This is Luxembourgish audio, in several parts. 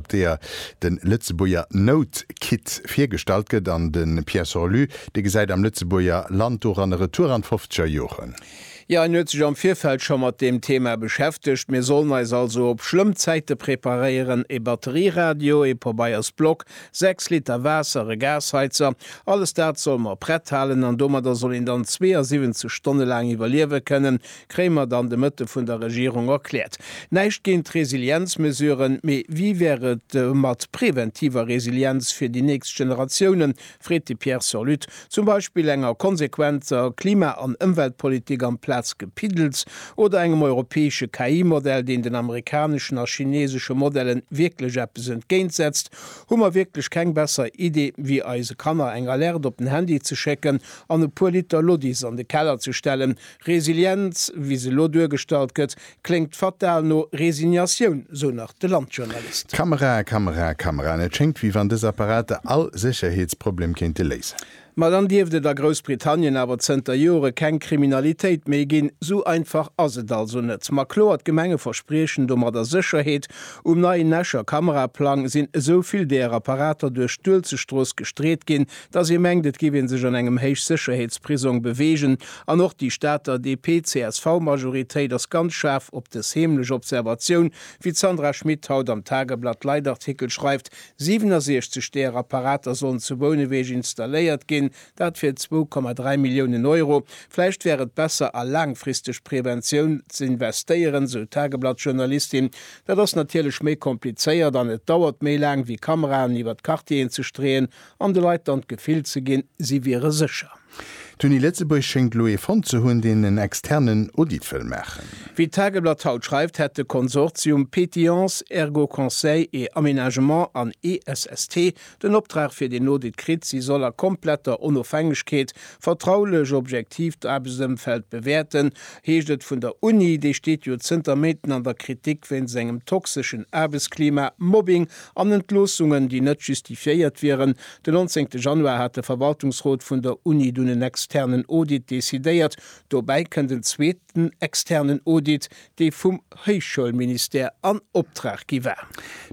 op deeër de Lëtzebuerger Note Kit virgestallt gëtt an de Pierre Sorlu, dee gesäit am Lëtzebuerger Land doran e Retour an d'fofzeger Joren. Jo, en huet sech am Virfeld scho mat deem Thema beschäftegt. Mir sollen eis also op schlëmm Zäite preparéieren, e Batterieradio, e Pobeiersblock, sechs Liter Waasser, e Gasheizer, alles dat solle mer prett halen an domadder soll een dann 72 Stonne laang iwwerliewe kënnen, Kréimer dann de Mëtte vun der Regierung erkläert. Näischt géint d'Resilienzmesuren, mee wéi wär et mat preventiver Resilienz fir déi nächst Generatiounen, freet de Pierre Surlutte. Zum Beispill enger konsequenter Klima an Ëmweltpolitik amplaz Gepiddels oder engem europäesche KI-Modell, deen den amerikaneschen a chinesesche Modellen wierklech eppes entgéint setzt, hu mer wierklech keng besser Idee wéi eise Kanner eng Alerte op den Handy ze schécken an e puer Liter Lodis an de Keller ze stellen, Resilienz, wéi se elo duergestallt gëtt, kléngt fatal no Resignatioun, sou nach de Landjournalist. Kamera, Kamera, Kameraen, et schéngt, wéi wann dës Apparater all Sécherheetsproblem kéinte léisen. Ma dann dierft et a Groussbritannien awer zënter Jore keng Kriminalitéit méi ginn. Sou einfach ass et also net. Ma kloer, d'Gemenge verspriechen domadder Sécherheet. Um neien Escher Kameraplang sinn esou vill däer Apparater duerch d'Uelzechtstrooss gestreet ginn, dass ee mengt et géif ee sech an engem Héichsécherheetsprisong beweegen, an och déi Stater DP-CSV-Majoritéit ass ganz schaarf op dës heemlech Observatioun, wéi d'Sandra Schmid haut am Tageblatt Leitartikel schreift, 67 deeër Apparater sollen zu Bouneweg installéiert ginn, dat fir 2,3 Milliounen Euro. Vläicht wär et besser a laangfristeg Preventioun z'investéieren, sou d'Tageblatt-Journalistin. Dat ass natierlech méi komplizéiert an et dauert méi laang, wéi Kameraen iwwer d'Quartieren ze streeën, An de Leit dann d'Gefill ze ginn, si wiere sécher. D'Uni Lëtzebuerg schéngt elo ee fonnt ze hunn, deen en externen Audit wëll maachen. Wéi d'Tageblatt haut schreift, hätt de Konsortium Pétillance, Ergo Conseil et Aménagement an ESST den Optrag fir deen Audit kritt. Si soll a kompletter Onofhängegkeet, vertraulech, objektiv d'Aarbechtsëmfeld bewäerten, heescht et vun der Uni. Déi steet jo zënter Méinten an der Kritik wéinst engem toxeschen Aarbechtsklima, Mobbing An Entloossungen, déi net justifiéiert wieren. Den 19 Januar hat de Verwaltungsrot vun der Uni dunn en externen Audit decidéiert. Dobäi kënnt en zweeten externen Audit, dee vum Héichschoulministère an Optrag gi war.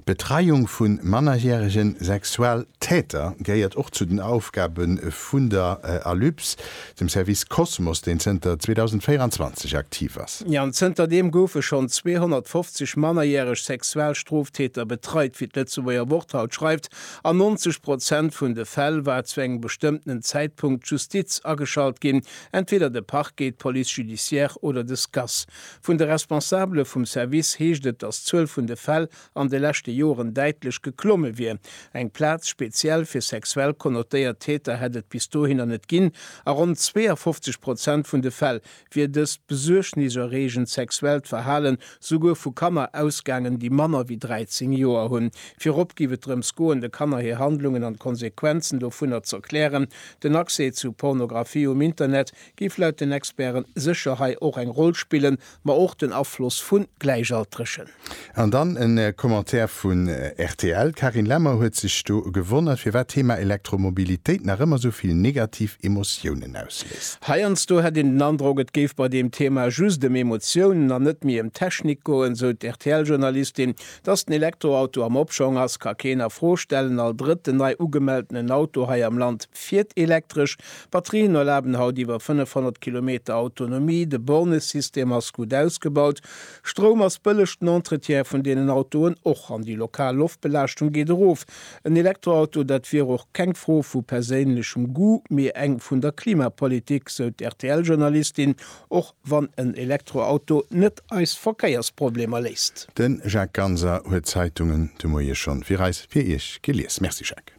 D'Betreiung vu mannerjärege Sexualtäter gehéiert och zu den Aufgabe vun der Alyps. dem Service Cosmos, deen zënter 2024 aktiv ass. Ja, an zënter deem goufe schonn 250 mannerjäreg Sexualstroftäter betreit, wéi d'Lëtzebuerger Wort haut schreift. An 90 Prozent vun de Fäll war zu engem bestëmmtenen Zäitpunkt d'Justiz ageschalt ginn, entweder de Parquet, d'Police judiciaire oder de SCAS. Vun de Responsabele vum Service heescht et, datt d'Zuel vun de Fäll an de leschte Joren däitlech geklomme wier. Eng Plaz speziell fir sexuell konnotéiert Täter hätt et bis dohinner net ginn. A ronn 52 Prozent vun de Fäll wier dëst besuergniserreegend sexuellt Verhalen souguer vu Kanner ausgaangen, déi manner wéi 13 Joer hunn. Virop géif et drëms goen, de Kanner hir Handlungen an d'Konsequenzen dovunner z'erklären. Den Accès zu Pornografie um Internet géif laut den Experten sécher hei och eng Roll spillen, ma och den Afloss vu Gläichaltregen. An dann en Commentaire vun rtl, Carine Lemmer huet sech do gewonnert firwat Thema Elektromobilitéit nach ëmmer sou vill negativ Emotiounen ausléist. Heiansdo hätt een den Androck et géif bei deem Thema just em Emotiounen an net méi em Technik goen, sou d'RTL Journalistin. Dass den Elektroauto am Opschong ass ka keen a Fro stellen, all drëtten nei ugemeltenen Auto hei am Land fiert elektresch. Batterien erlaben haut iwwer 500 Kilometer Autonomie, de Bornesystem ass gutt ausgebaut. Stroum ass bëlleg, den Entretien vun deenen Autoen och, an déi lokal Loftbelaaschtung geet erof. En Elektroauto, dat wier och keng Fro vu perséinlechem Goût, mee eng vun der Klimapolitik, sou d'RTL-Journalistin, och wann en Elektroauto net eis Verkéiersproblemer léist. De Jacques Ganser huet d'Zeitungen de Moie schonn fir eis, fir Iech gelies. Merci Jacques.